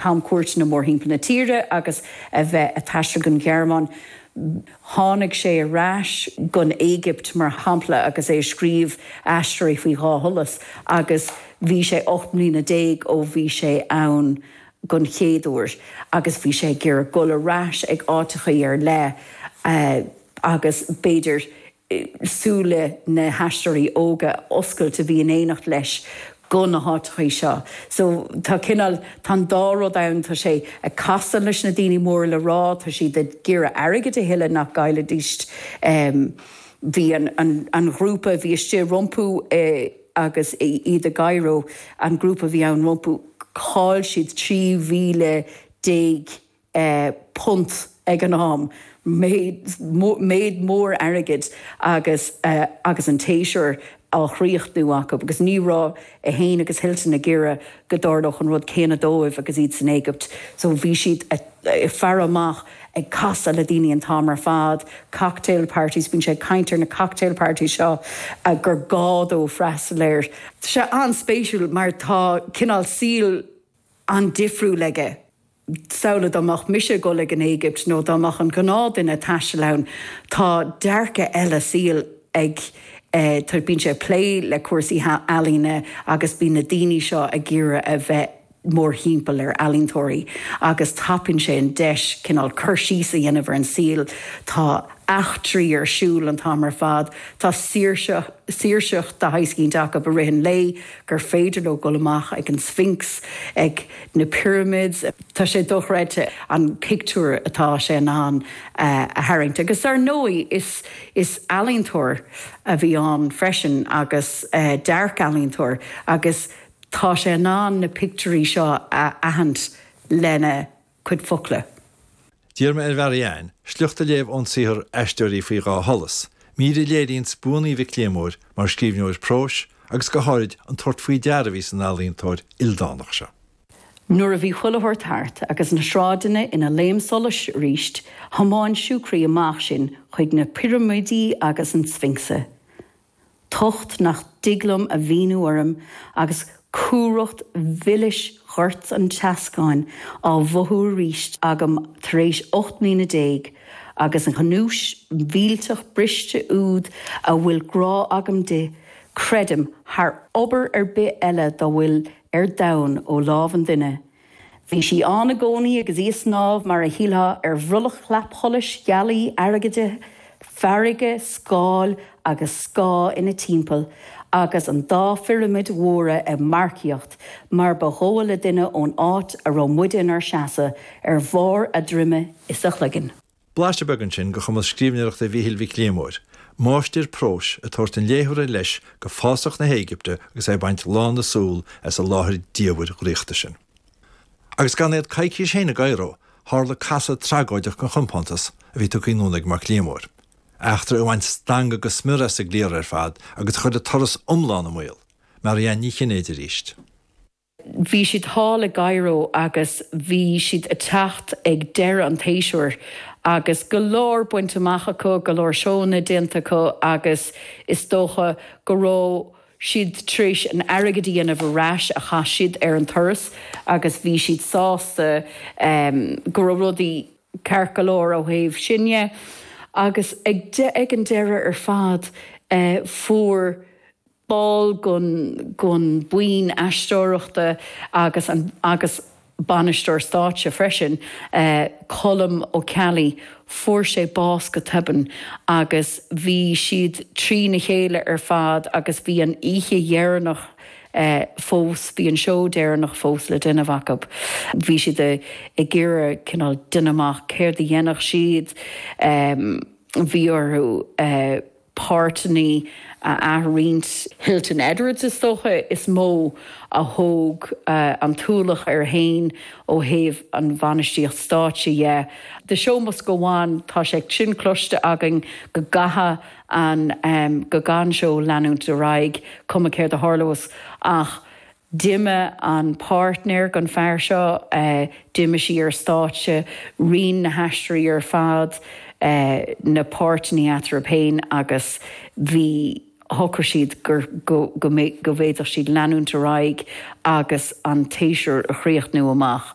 camchuairteanna mórthimpeall na tíre agus a bheith ag taisteal gon Ghearmáin. Tháinig sé ar ais gon Éigipt, mar shampla, agus é ag scríobh Aisteoirí faoi Dhá Sholas, agus bhí sé ocht mbliana déag ó bhí sé ann gon chéad uair, agus bhí sé ag iarraidh dul ar ais ag áiteachaí ar leith, agus b'fhéidir súile na haisteoirí óga a oscailt a bhí in éineacht leis go na háiteachaí seo. So tá cineál, tá an dá rud ann, tá sé ag casadh leis na daoine móra le rá, tá siad ag iarraidh airgead a thuilleamh nach gcaillfidís. Bhí an ghrúpa a bhí istigh rompu agus iad i gCairo, an grúpa a bhí ann rompu, chaill siad 13,000 punt ag an am, méid mór airgid agus agus an tséasúr á chríochnú acu agus ní raibh é féin agus Hilton ag iarraidh go dtarlódh an rud céanna dóibh agus iad san Éigipt. So bhí siad ag faire amach, ag casadh le daoine an t-am ar fad, cocktail parties, bíonn sé ag caint ar na cocktail parties seo gur gá dó freastal air. Tá sé an-spéisiúil mar tá cineál saol an-difriúil aige. samhlaigh dá mbeadh mise ag dul ag an Éigipt nó dá mbeadh an gnáth duine ag taisteal ann, tá dearcadh eile saoil ag, tá, bíonn sé ag plé le cúrsaí ealaíne agus bíonn na daoine seo ag iarraidh a bheith mórthimpeall ar ealaíontóirí agus tapaíonn sé an deis cineál cur síos a dhéanamh ar an saol, tá eachtraí ar siúl an t-am ar fad, tá saoirse, saoirseacht de shaghas eicínt acu i rith an lae, gur féidir leo dul amach ag an Sphinx, ag na Pyramids, tá sé dochreidte an pictiúr atá sé in ann a tharraingt. Agus dar ndóigh is ealaíontóir a bhí ann freisin agus dearc ealaíontóir agus tá sé in ann na pictiúirí seo a aithint lena chuid focla. D'iarr mé ar Mhary Ann sliocht a léamh ón saothar Aisteoirí faoi Dhá Sholas, mír a léiríonns buannaí Mhic Liammóir mar scríbhneoir próis agus go háirid an tabhairt faoi deara a bhí san ealaíontóir ildánach seo. Nuair a bhí chuile shórt thart agus na sráideanna ina laom solais arís, thiomáin Siúcraí amach sinn chuig na pirimidí agus an Sfincs. tocht nach dtig liom a mhíniú orm agus cumhracht mhilis ghoirt an tseascáin á mhothú arís agam tar éis ocht mbliana déag agus an ghnúis mhillteach briste úd a bhfuil grá agam di, creidim, thar obair ar bith eile dá bhfuil ar domhan ó lámh an duine, Bhí sí ann i gcónaí agus í ag snámh mar a shílfeá ar bhrollach chlapsholais ghealaí airgid, farraige, scáil agus scáth ina timpeall agus an dá phirimid mhóra ag marcaíocht mar ba dhóigh le duine ón áit a raibh muide inár seasamh, ar bharr a droime is a chloiginn. Blaiseadh beag ansin de chumas scríbhneoireachta Mhichíl Mhic Liammóir, máistir próis, ag tabhairt an léitheora leis go fásach na hÉigipte agus é ag baint lán na súl as an láthair dhiamhair dhraíochta sin. Agus gan iad coicís féin i gCairo, tharla casadh tragóideach den chompántas a bhí tagtha anonn ag Mac Liammóir, eachtra a bhain stangadh go smior as an gcliar ar fad agus a chuir an turas iomlán i mbaol, Marianne Ní Chinnéide arís. Bhí siad thall i gCaireo agus bhí siad ag teacht ag deireadh an tséasúir agus go leor bainte amach acu, go leor seónna déanta acu agus is dócha go raibh siad tar éis an airgead a dhéanamh ar ais a chaith siad ar an turas agus bhí siad sásta go raibh rudaí ceart go leor ó thaobh sin de agus ag an deireadh ar fad fuair ball den bhuíon aisteoireachta agus an agus bainisteoir stáitse freisin, Colm Ó Ceallaigh, fuair sé bás go tobann agus bhí siad trína chéile ar fad agus bhí an oíche dheireanach fós, bhí an seó deireanach fós le déanamh acu. Bhí siad ag iarraidh cineál déanamh amach céard a dhéanfadh siad, bhí orthu. páirteanna a ath-roinnt. Hilton Edwards, is dócha, is mó a thóg an t-ualach air féin ó thaobh an bhainistíocht stáitse dhe. The show must go on, tá sé sin cloiste againn, go gcaithfidh an, go gcaithfidh an seó leanúint ar aghaidh, cuma céard a tharlós. Ach D'imigh an páirtnéir den fear seo, d'imigh sí ar stáitse, roinn na haisteoirí ar fad na páirteanna eatarthu féin agus bhí, shocraigh siad go bhféadfadh siad leanúint ar aghaidh agus an séasúr a chríochnú amach.